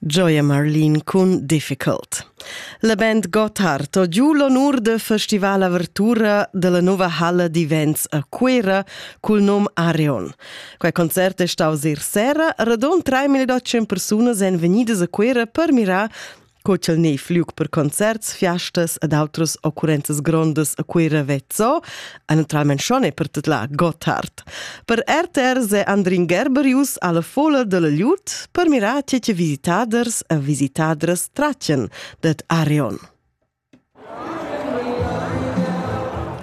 Gioia Marlin cun Difficult. La band Gotthard ho giu l'onur de festival avertura della nova halla d'events a Cuera cul nom Areon. Quei concert è staus ir sera, radon 3800 persunas èn vegnidas a Cuera per mirar co ch'el ne fluc per concerts, fiastas ed outras occurrenzas grondas a Cuira vezzo, e naturalment schon è per tut la Gotthard. Per RTR se Andrin Gerberius alla fola della Liut per mirar che visitaders e visitadras tracen det Arion.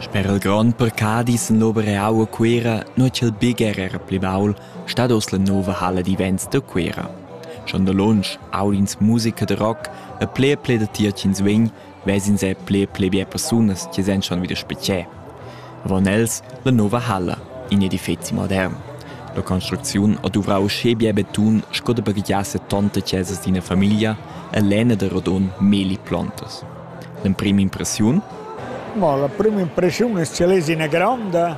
Sper il grond per Cadi sen l'obra eau a Cuera, nua ch'el bger era pli baul, stat oz la nova halla d'events da Cuera. Schon da lunsch, aud'ins musica da rock e ple e ple da tier ch'ins vegn, ves'ins er ple e ple bia persunas che sen schon wieder spezier. avon els la nova halla, in edifeci modern. La construcziun ha duvrau uschè bia betun sco da baghegiasse tonta chesas d'ina famiglia e lena da rodon meli plontas. L'emprima impressiun? Mo la prima impressiun che lesi ina gronda.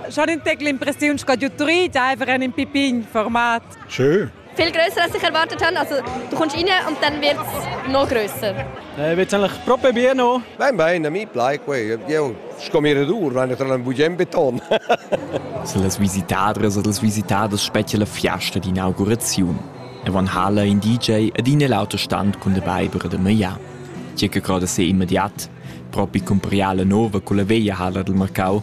Schon in tec l'impressiun sco d'utrit, einfach en in pipin format. Schön. viel grösser, als ich erwartet habe. Also, du kommst rein und dann wird es noch grösser. Eh, wird eigentlich proprio bien, no? Bene, bene, mi plai que. Io scommire dur, wenn ich tra un bugen beton. so las visitadras e las visitaders spettia la fiasta d'inauguraziun. E van hala in DJ ed in l'autostand cun de Weibere de Maya. Tge che croda se immediat, propi cun priala nova con la veia hala del Marcau,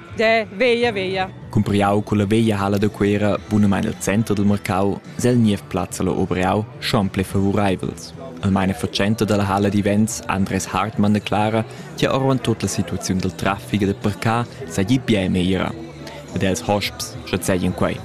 De veia veia. Cumpriau culla veglia hala da Cuera, bunamein el center dil marcau, sel niev plazza la Obriau schon ple favoreivels. Almeina fatschenta dalla hala divents Andres Hartmann de Clara, tia orvan tot la situaziun del traffic e de parcar seigi bien meglra. Ed els hosps, sche seigien quei.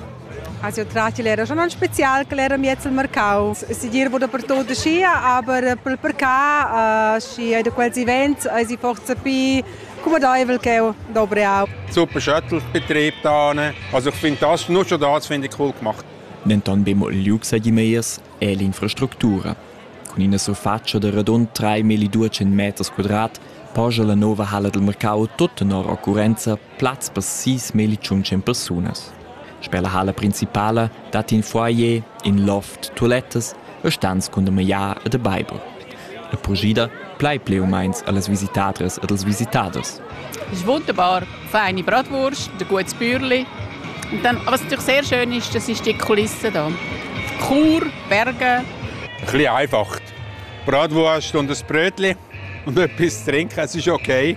Also tratti l'era schon non spezial che l'era miez il mercau. Si dir wurde per tot scia, aber per percar scia de quels events ai si forza pi Cumodaivel ch'eu dovriau. Super Shuttle, Betrieb tane. Also ich finde das, nur schon das finde ich cool gemacht. Denton be mo il liug seigi meiers è l'infrastructura. Cun ina surfatscha da radund 3.200 meters quadrat poja la nova halla del mercau tot tenor occurenza plaz per 6.100 persunas. Sper la halla principala dat in foyer, in loft, tulettas e stans cun da magliar e da baiver. La purschida plai pli u meins allas visitadras ed als visitaders. Das Wunderbar, feine Bratwurst, der gutes Bürli. Und dann, was natürlich sehr schön ist, das ist die Kulisse hier. Chur, Berge. Ein bisschen einfach. Bratwurst und ein Brötchen und etwas zu trinken, es ist okay.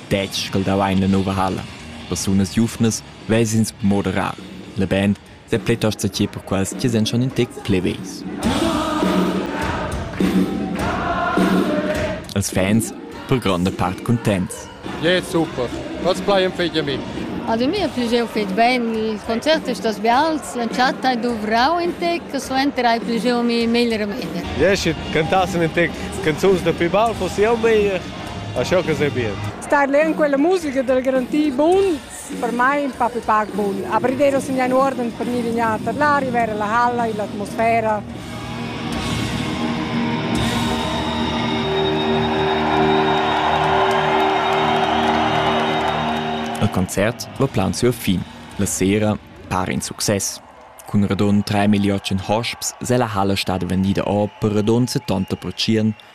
Detg ch'el davein la nova halla, persunas giuvnas ves'ins moderar. La band sa plitost satir per quels che senschan in tec pli vegls. Els fans per gronda part contents. Ja, yeah, super. Was bleiben fehlt ihr mich? Also mir hat jau fet bene, i concert è stas bials, la chatta è duvrau in tec, suenter hai più mi meglio meglio. Ja, ich cantassi in tec canzons da più baul, fosse jau meglio. Asciò che sei bien. Star leu in quella musica del garantir bun, per mai un po' più pac bun. Aprire a segnare un ordine per gnir lignata l'aria, vedere la halla, l'atmosfera. Il concert va plan sur fin. La sera para in success. Cun radund 3 million hosps se la halla stada vendida o per radund 70%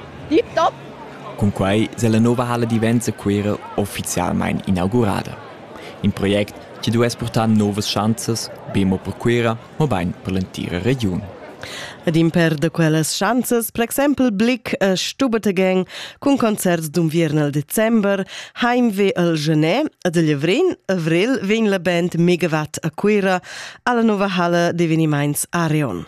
Cunquei sella nova halla divenza Cuera ufficialmein inaugurada. In project che duess purtar novas schanzas, be mo per Cuera, mobein per l'entira regiun. Ed imper da quellas schanzas, per exempel Blick e Stubertegeng cun concerts d'unviern al december, heimweh al Genais ed a Lavrin, avril vegn la band Megawatt a Cuera alla nova halla d'evenimaints Arion.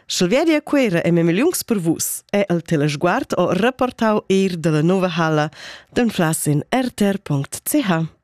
Sch'el vedi a Cuera e memigliungs per vus, è el telesguard o reportau eir dalla nova halla d'anflas in rtr.ch.